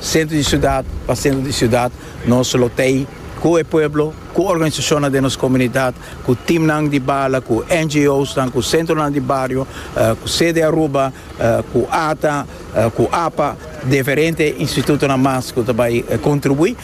Sentro di siudat pa sentro di siudat nos lo tei ku e pueblo, ku organisashonnan den nos komunidat, ku timnan di bala, ku NGOsnan, ku sentronan di bario, ku sede Aruba, ku ata, ku apa, diferente institutonan mas ku ta bai kontribuí.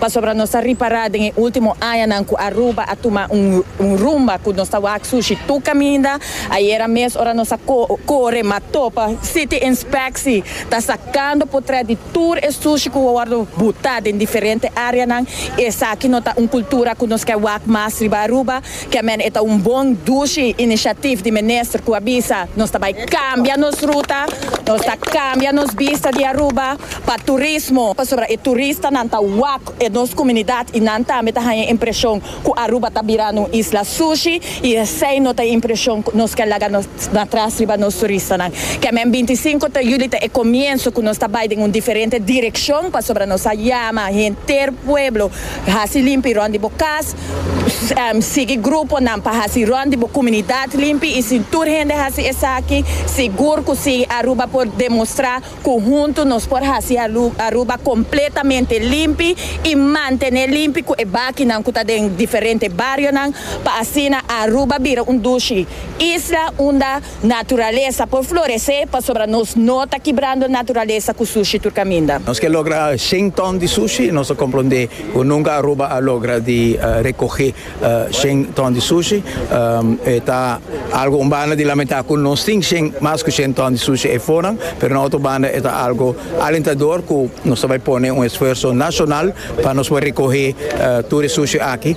Pasobra nos ta ripará den e último añanan ku Aruba a tuma un rumba ku nos ta wak sushi tur kaminda. Ayera mes ora nos a kore m'a topa City Inspectie ta sakando potrèt di tur e sushi ku a wòrdu butá den diferente áreanan. Esaki no ta un kultura ku nos ke wak mas riba Aruba. Kè men e ta un bon dushi inishatif di minister ku a bisa, Nos ta bai kambia nos ruta, nos ta kambia nos bista di Aruba pa turismo, pasobra e turistanan ta wak e nos kumunidat i nan tambe ta haña impreshon ku Aruba ta birando un isla sushi i esei no ta e impreshon ku nos ke laga na tras riba nos turistanan. Kè men binti i sinku ta yuli ta e komienso ku nos ta bai den un diferente direkshon, pasobra nos a yama henter pueblo hasi limpi rònt di bo kas, Sigui gruponan pa hasi rònt di bo kumunidat limpi i si tur hende hasi esaki, sigur ku Sigui Aruba por demostrá ku huntu nos por hasi Aruba kompletamente limpi i mantené limpi ku e bakinan ku ta den diferente barionan pa asina Aruba bira un dushi isla unda Naturalesa por floresé pasobra nos no ta kibrando naturalesa ku sushi tur kaminda. Nos ke logra shen ton di sushi i nos a komprondé ku nunka Aruba a logra di rekohé shen ton di sushi. E ta algu un banda di lamentá ku nos tin shen mas ku shen ton di sushi ei fonan, pero na otro banda e ta algu alentador ku nos ta bai pone un esfuerso nashonal pa nos por rekohé tur e sushi aki.